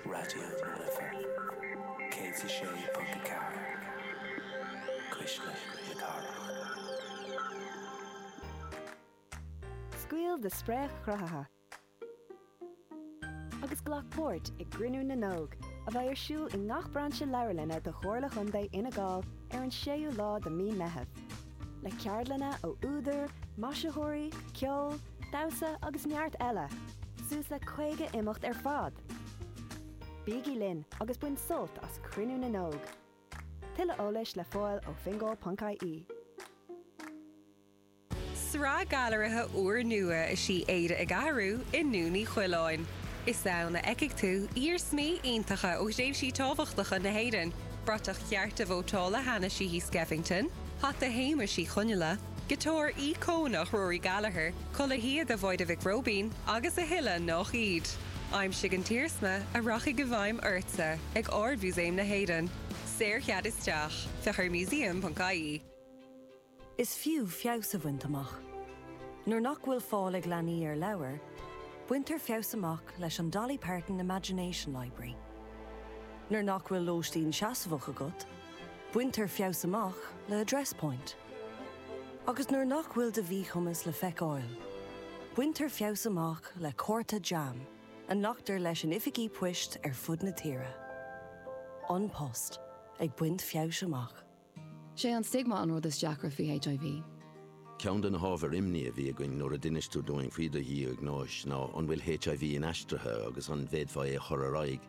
Raidió na Life 106.4 Cuisle na Cathrach. Scaoil do spréach chruthaithe agus glac páirt i gCruinniú na nÓg, a bheidh ar siúl i ngach brainse leabharlainne de Chomhairle Chontae Fhine Gall ar an 6ú lá de mhí Meitheamh. Le ceardlanna ó údair, maisitheoirí, ceol, Damhsa agus neart eile, suas le 50 imeacht ar fad! Bígí linn agus bain sult as Cruinniú na nÓg! Tuilleadh eolais le fáil ó fingal.ie. Sraith gailearaithe úrnua is í Éire ag Athrú i nDún Uí Choileáin. Is ann a fheicfidh tú iarsmaí iontacha ó thréimhsí tábhachtacha na hÉireann, bratach chearta vótála Hanna Sheehy Skeffington, hata Shéamuis Uí Chonghaile, Giotár íocónach Rory Gallagher, culaith shíoda Mháire Mhic Róibín agus a thuilleadh nach iad. Aimsigh an t-iarsma a rachaidh i bhfeidhm ortsa ag Ard-Mhúsaem na hÉireann. Saor-chead isteach. Féach ar museum.ie. Is fiú feabhas a bhaint amach. Nuair nach bhfuil fáil ag leanaí ar leabhair, baintear feabhas amach leis an Dolly Parton Imagination Library. Nuair nach bhfuil lóistín seasmhach agat, baintear feabhas amach le Address Point. Agus nuair nach bhfuil do mhíchumas le feiceáil, baintear feabhas amach le cárta JAM a nglactar leis in oifigí poist ar fud na tíre. An Post ag baint feabhais amach. 'Sé an stigma an rud is deacra faoi HIV. Ceann de na hábhair imní a bhí againn nuair a d'inis tú dúinn faoi do dhiagnóis ná an bhfuil HIV inaistrithe agus an bhféadfá é a chur ar aghaidh.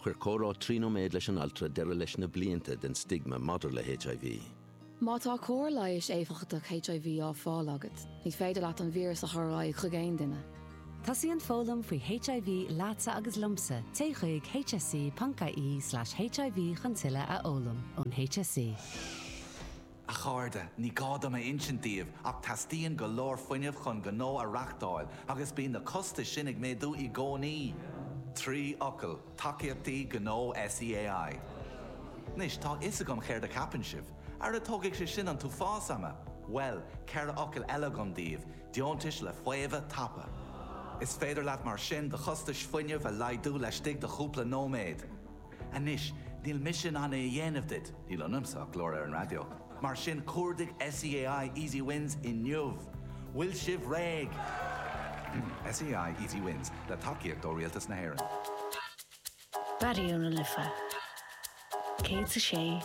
Chuir comhrá trí nóiméad leis an altra deireadh leis na blianta den stigma maidir le HIV. Má tá cóir leighis éifeachtach HIV á fáil agat, ní féidir leat an víreas a chur ar aghaidh chuig aon duine. Tosaíonn foghlaim faoi HIV leatsa agus liomsa, téigh chuig hse.ie/hiv chun tuilleadh a fhoghlaim ón HSE. A chairde, ní gá dom a insint daoibh ach teastaíonn go leor fuinnimh chun gnó a reachtáil agus bíonn na costais sin ag méadú i gcónaí. Trí fhocal, tacaíochtaí gnó SEAI. Anois, tá a fhios agam céard a cheapann sibh. Ara tógfaidh sé sin an t-uafás ama! Bhuel, ceithre fhocal eile agam daoibh, deontais le faomhadh tapa. Is féidir leat mar sin do chostais fuinnimh a laghdú laistigh de chúpla nóiméad. Anois, níl mise in ann é a dhéanamh duit, níl ionamsa ach glór ar an raidió, mar sin cuardaigh SEAI Easy Wins inniu! Bhfuil sibh réidh? SEAI Easy Wins, le tacaíocht ó Rialtas na hÉireann. Raidió na Life 106.4.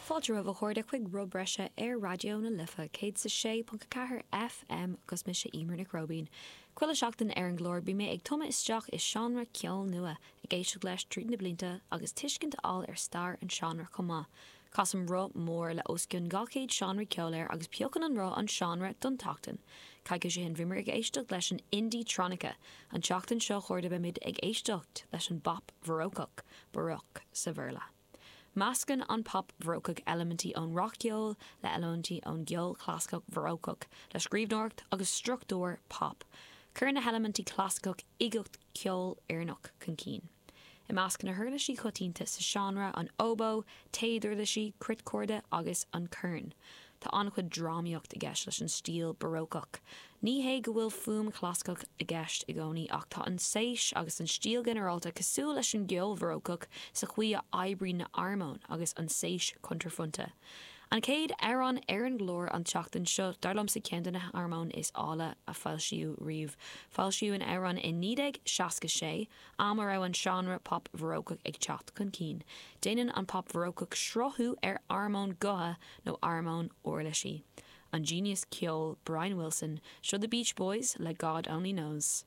Fáilte romhaibh a chairde chuig Rogha Bhreise ar Raidió na Life 106.4 FM agus mise Emer Nic Róibín. Chuile sheachtain ar an gclár bíonn mé ag tumadh isteach i seánra ceoil nua, ag éisteacht leis tríd na blianta agus tuiscint a fháil ar stair an seánra chomh maith. Casaim roth mór le os cionn 200 seánra ceoil air agus piocann an roth an seánra don tseachtain. Coicís ó shin bhíomar ag éisteacht leis an indie-tronica, an tseachtain seo a chairde beimid ag éisteacht leis an bpop Bharócach, Baroque sa Bhéarla. Meascann an pop bharócach eilimintí ón rac-cheol le eilimintí ón gceol clasaiceach bharócach le scríbhneoireacht agus struchtúr pop. Cuireann na heilimintí clasaiceach uigeacht ceolfhoirneach chun cinn. I measc na huirlisí coitianta sa seánra an óbó, téaduirlisí, cruitchorda agus an corn. Tá an-chuid drámaíocht i gceist leis an stíl barócach. Ní hé go bhfuil fuaim chlasaiceach i gceist i gcónaí ach tá an tséis agus an stíl ghinearálta cosúil leis an gceol bharócach sa chaoi a oibríonn na armóin agus an tséis cuntraphointe. An chéad amhrán ar an gclár an tseachtain seo dar liomsa ceann de na harmóin is áille a foilsíodh riamh. Foilsíodh an amhrán i 1966. am a raibh an seánra pop bharócach ag teacht chun cinn. Déanann an pop bharócach srathú ar armóin gutha nó armóin uirlisí. An genius ceoil Brian Wilson, seo The Beach Boys le God Only Knows.